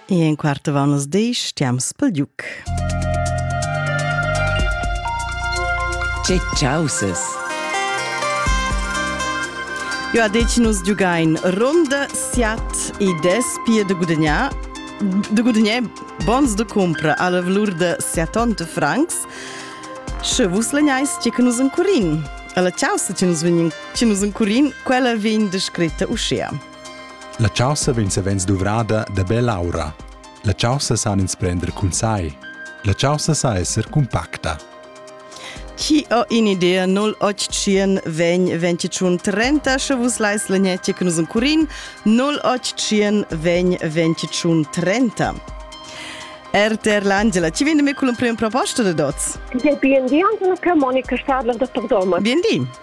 E en quarta vanas deis tiams pel giuc. Tge chausas! Jo a dec nus giugain ronda, siat e des pia de gudagnar de gudagnar bons de compra alla valur de 70 francs. Sche vus legnais ce che nus encurin. Alla chaussa ce nus vegnin, ce nus encurin, quella vegn descritta uschea. La chaussa vegn savens duvrada da bell'aura. La chaussa san ins prender cun sai. La chaussa sa esser cumpacta. Chi ho in'idea 0800 vegn 21 30 sche vus lais l'agnetje che nus encurin 0800 vegn 21 30 RTR l'Angela, ci vende me con la prima proposta de Doz? Bien di, Antonia Monica Stadler da Tordoma. Bien di.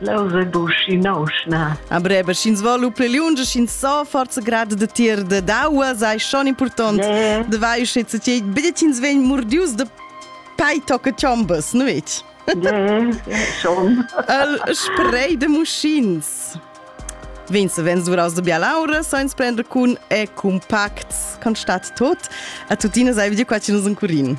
Leu se buschi nausna. A breba, sch'ins vo lu pli lunge, sch'ins so forza grad de tier de daua, sei schon important. Yeah. De vai sche se ti bidet ins ven murdius de pei tocca chombas, nu it? Yeah, schon. El spray de muschins. Vin se vens duraus de bialaura, so ins prendre cun e compacts, constat tot. A tuttina sei video qua ci nus un curin.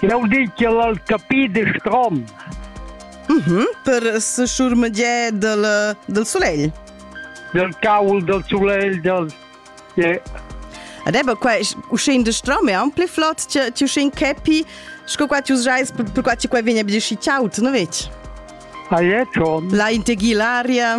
Jeu di ch'el ha capi de strom. Mm -hmm, per seschurmegiar dal, dal sulegl. Dal caul dal sulegl dal... Yeah. Ed eba qua, uschin de strom è ampli flot, ti uschin capi, sco qua ti usais, per qua ti qua vegna be di schi ciaut, no vec? Ah, è schon. La integhi l'aria.